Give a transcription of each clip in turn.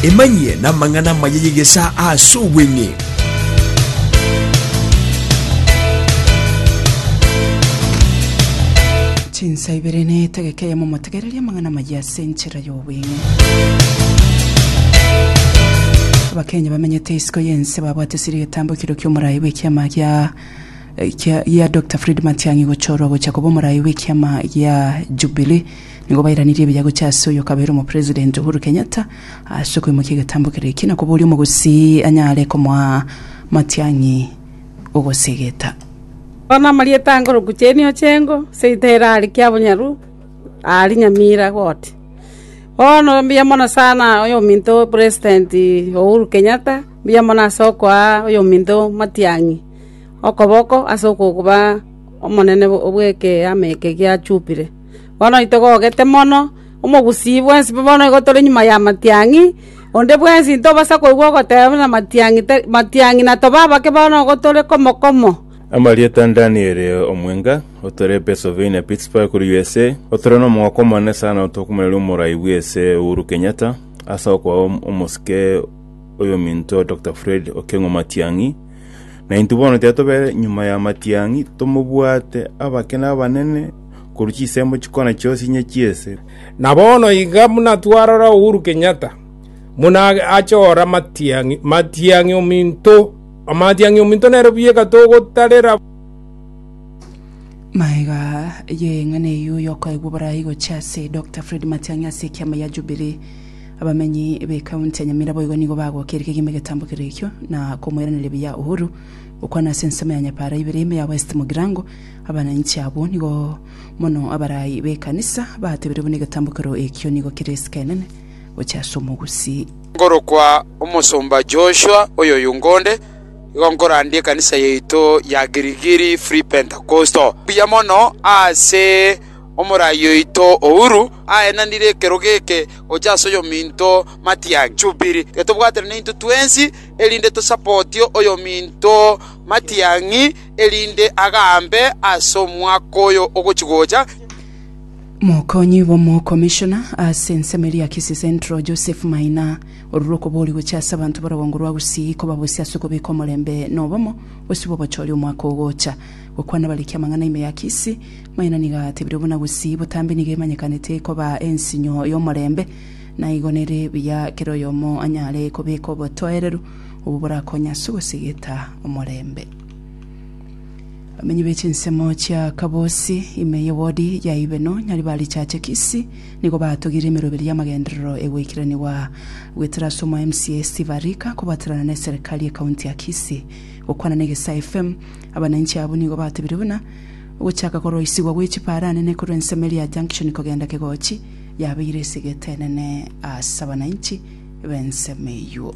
Emanyie namang'ana amaya y'egesaa aase obweng'e. Chinsa ibere na etegeka eyemo motegererie amang'ana amaya ase enchera y'obweng'e. Abakenya bamenyete isiko y'ense babwate siri getambukiro ki'omorai bw'ekiama gia eh, kia- gia Dr Fred Matiang'i gochorwa gocha koba omorai bw'ekiama gia Jubilee Nigo bairanirie ebiya gochia ase oyo okabeire omopresident Uhuru Kenyatta ase okoimokia egetambo kere eki na koboria omogosii anyare komoa matiang'i ogosegeta. Aya namarieta angoroku chenio chengo seita ere are kiabonyaru ari nyamira goti. Bono mbuya mono sana oyo ominto president Uhuru Kenyatta mbuya mono ase okoa oyo ominto matiang'i okoboko ase okoba omonene bwe ekeama eke gia Jubilee. Bono nitogogete mono, omogusii bwensi bono igo tore nyuma y'amatiang'i, onde bwensi ntobasa koigwa ogoteba buna amatiang'i tari amatiang'i na tobe abake bono igo tore komo komo. Amarieta a Daniel omwenga, otare Pennsylvania, Pittsburgh, korwa USA, otare nomogaka omonene sana otokomoreria omorai bw'ESA Uhuru Kenyatta ase okoa omosike oyominto Doctor Fred Okengo Matiang'i. Naintwe bono tiga tobe nyuma y'amatiang'i, tomobwate abake na abanene, korwa chisembo chikona chionsi inye chi'esegi. Na bono iga buna twarora Uhuru Kenyatta buna ache ora matiang'i, matiang'i ominto, matiang'i ominto nere buyeka togotarera. Maega ye eng'ana eyio yokoegwa borai gochia ase Dokta Fred Matiang'i ase ekiama gia Jubilee. Abamenyi b'ekaunti ya Nyamira boigo nigo bagokirie kegima egetambo kere ekio na komoiraneria buya Uhuru gokwana ase ensemo ya Nyapaara ibere ime ya West Mugirango Abananchi abwo nigo mono abarai b'ekanisa batebeire buna egetambokero ekio nigo kere esike enene gochia ase omogusi. Nkorokwa Omosomba Joshua oyoyunga onde, igo nkorandia ekanisa yaito ya Girigiri Free Pentecostal buya mono ase omorai oito Ouru. Aenanire ekerogo eke gochia ase oyominto Matiang'i Jubilee. Getobwatera nainto twensi erinde tosapotie oyominto Matiang'i. erinde agaambe as'omwaka oyo ogochi gocha. Mokonyi bw'omokomishona ase ensemo eria Kisii Central, Joseph Maina, orure okobori gochia ase abanto b'orogongo rwa Gusii kobabosia ase okobeka omorembe na obomo bosio bw'obochori omwaka ogocha. Gokwana bariki amang'ana ime ya Kisii, Maina nigo atebirie buna Gusii botambe nigo emanyekanete koba ensinyo y'omorembe naigo nere buya kera oyomo anyare kobeka obotoereru obwo borakonye ase ogosegeta omorembe. Abamenyi be chinsemo chia Kabosi, ime y'ewodi ya Ibeno, Nyaribari Chache Kisii, nigo batogire emeroberi y'amagenderero e goikeraniwa goetera ase omo MCA Steve Arika kobaterana na eserekari ye kaunti ya Kisii. Gokwana na Egesaa FM, abananchi abwo nigo batebire buna ogochaka koroisigwa gwe chiparanene korwa ensemo eria Junction kogenda Kegochi yabeire esegete enene ase abananchi b'ensemo eyio.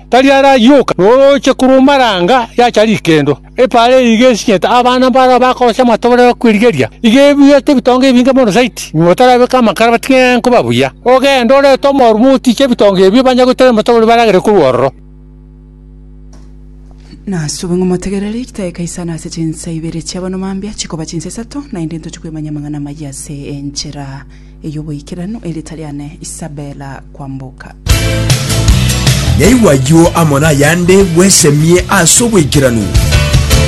tari arayie oka, norooche korwa omaranga yacha rikendo. Epaara eye iga esinyete abana mbarao bakorosia amatobore okwerigeria, iga ebuete ebitonga ebinge mono zaidi, nyuma batarabeke amakara batige nkoba buya. Ogende orete omorume otiche ebitonga ebio, banye goitera amatobore baragere korwa ororo. Nasube ng'a omotegereri gitae Kaisari ase chinsa ibere chi'abanwa mambia chikoba chinsa isato, naende intoche kwemanyia amang'ana amayia ase enchera. Ey'oboikeranu erita riane Isabella Kwamboka. Naigwa ayio amo nayande bwesemie ase oboikeranu.